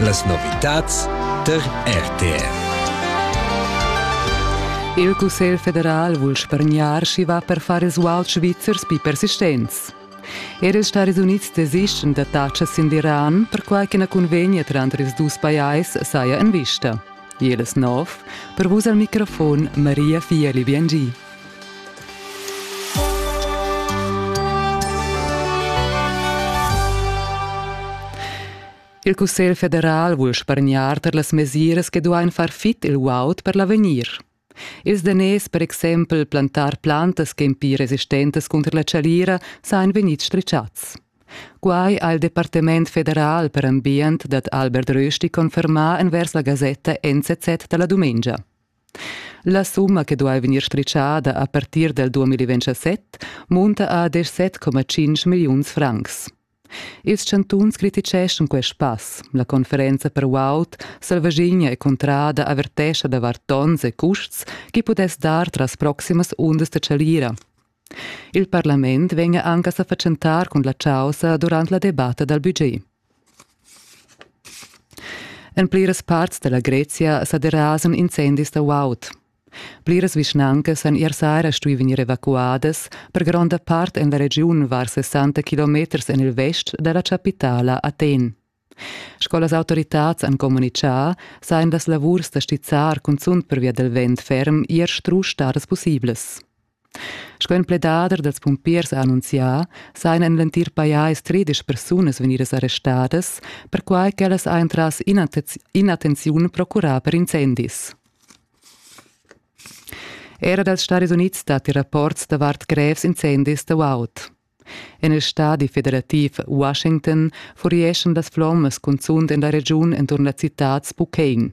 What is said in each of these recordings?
Las novitads tar RTR. Il Cussegl federal vul spargnar sch'i va per far resguard svizzers pi persistents. Era els Stadis Unids desistian da tacas sin l'Iran, perquai che la cunvegna tranter ils dus pajais saja en vista. Ielas nov, per vus al microfon Maria Fieli Biangi. Il Cussegl federal vul spargnar per las mesiras che duain far fit il guaud per l'avegnir. Ils daners per exempel plantar plantas ch'en pli resistentas cunter la chalira san vegnir stritschats. Quai ha il Departament federal per ambient dad Albert Rösti confermà envers la gasetta NZZ da la dumengia. La summa che duai vegnir stritschada a partir dal 2027 munta a 17,5 milliuns francs. Ils chantuns criticheschan quest pass. La conferenza per guaud Selvaschigna e Cuntrada avertescha davart donns e custs chi pudess dar tras proximas undas da chalira. Il parlament vegna anche a fatschentar cun la causa durant la debatta dal budget. En pliras parts della Grezia sa derasan incendis da guaud. Pliras vischnancas han ier sera stuì vegnir evacuadas, per gronda part en la regiun var 60 kilometers en il vest da la chapitala Aten. Sco las autoritads han communitgà, sajan las lavurs da stizzar cunzunt pervia dal vent ferm ier strusch stadas pussiblas. Sco in pledader dals pumpiers ha annunzià, sajan en l'entir pajais tredisch persunas vegnidas arrestadas, perquai ch'ellas hajan tras in'attenziun procurà per incendis. Era dals Stadis Unids datti rapports davart grevs incendis da guaud. En il stadi federativ Washington furieschan las flommas cunzunt en la regiun enturn la citad Spokane.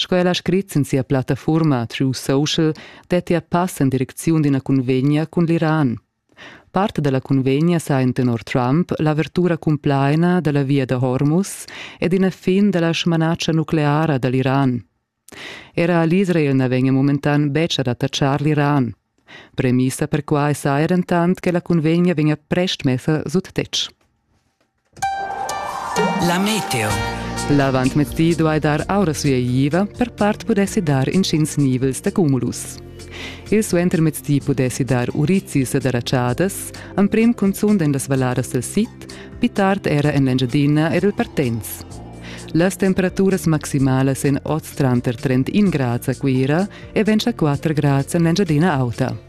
Sco el ha scrit sin sia plattafurma True Social dettia pass en direcziun d'ina cunvegna cun l'Iran. Part da la cunvegna sa en tenor Trump l'avertura cumplaina da la via da Hormuz ed ina fin da la smanatscha nucleara da l'Iran. Era l'Israel na vegnia momentan betg ad attacchar l'Iran. Premissa per quai saja dentant che la cunvegna vegnia prest messa sut tetg. La meteo. L'avantmezdi duai dar aura sueigliva, per part pudessi dar intgins nivels da cumulus. Il suentermezdi pudessi dar urizis ed aratschadas, emprim cunzunt en las valladas del sid, pli tard era en l'Engiadina ed il Partenz. Las temperaturas maximalas en oz tranter 31 grads a Cuira e 24 grads en l'Engiadina Auta.